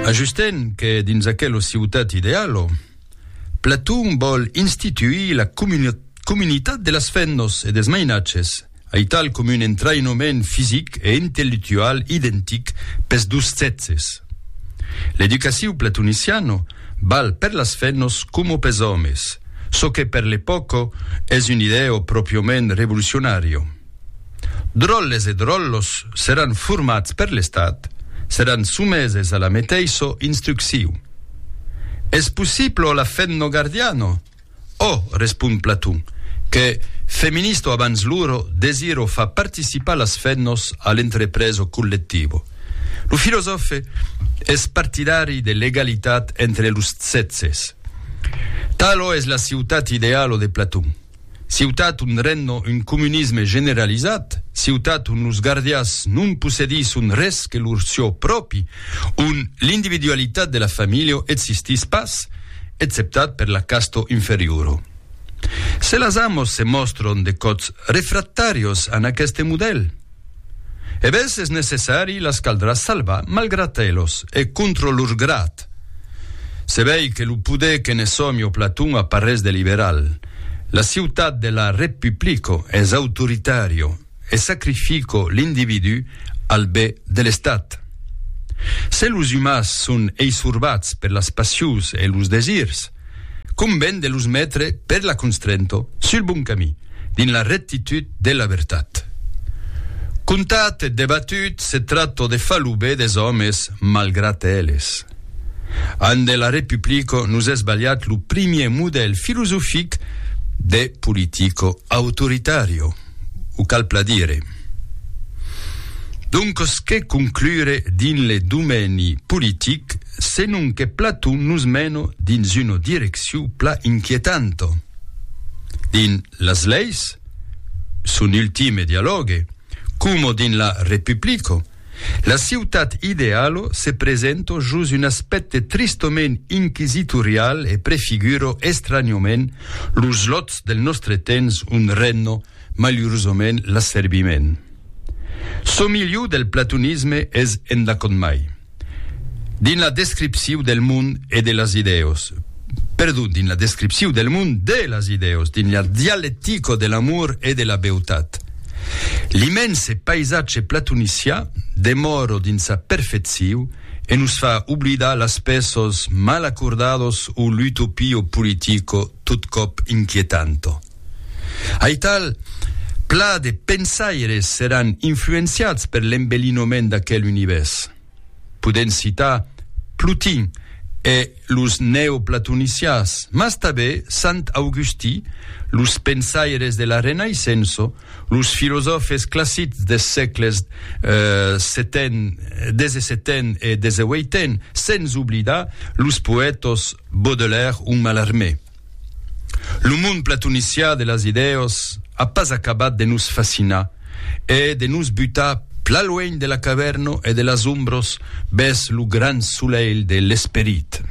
Ajustent que dins aquelo ciutat idealo, Platon vòl instituir la comunitat de las fennos e des mainatges, aital com un entraïnament fisic e intellectual identic pes dus sèxes. L'educaciu platoniciano val per las fennos coma pes òmes, çò que per l'epòca es un idèo pròpiament revolucionario. Dròlles e dròllos seràn formats per l'Estat, seràn someses a la meteissa instrucciu. Es possiblo la femno gardiano? Ò, respond Platon, que, feminista abans loro, desiro far participar las femnos a l'entrepresa collectiva. Lo filosòfe es partidari de l'egalitat entre los sèxes. Talo es la ciutat idealo de Platon. Ciutat on regna un comunisme generalizat, ciutat on los gardias non possedisson res que lor çò pròpi, on l'individualitat de la familha existís pas, exceptat per la casta inferiora. Se las amos se mòstran de còps refractàrios a n' aqueste modèl, E bes es necessari las caldrà salvar malgrat elos e contro lor grat. Se vei que lo poder que ne sòmi o Platon a parrés de liberal. La ciutat de la Repuplico es autoritario e sacrifico l'individú al be de l'estat. Se los umans son eisorbats per las passions e los desirs, Conven de los metre per la constrento sul bon camí, dins la rectitud de la vertat. Contat e debatut se tracto de far lo be des òmes malgrat eles. An de la Republico nos es balhat lo primier modèl filosofic de politico autoritario. o cal pla dire. Doncos que conclure dins le domeni politic senon que Platon nos meno dins una direccion pla inquietanta. Dins las leis, son ultime dialògue, coma dins la Republica, La ciutat idealo se presento jos un aspècte tristament inquisitorial e prefiguro estranhament los lòts del nòstre temps un renno malurosament l'asserbiment. Çò milhor del platonisme es endacònt mai dins la descripciu del mond e de las idèos, Perdut dins la descripciu del mond de las idèos, dins la dialectico de l'amor e de la beutat. L'immense paisatge platonicià demòro dins sa perfecciu e nos fa oblidar las pèços mal acordados o l'utopio politico tot còp inquietanto. Aital, pla de pensaires seràn influenciats per l'embelinoment d'aquel univèrs. Podèm citar Plotin e los neoplatonicians, mas tanben Sant Augustí, los pensaires de la Renaissença, los filosòfes classics des sègles XVII e XVIII, sens oblidar los poètas Baudelaire o Mallarmé. Lo mond platonicià de las idèos a pas acabat de nos fascinar e de nos butar pla luènh de la cavèrno e de las ombros bès lo grand solelh de l'esperit.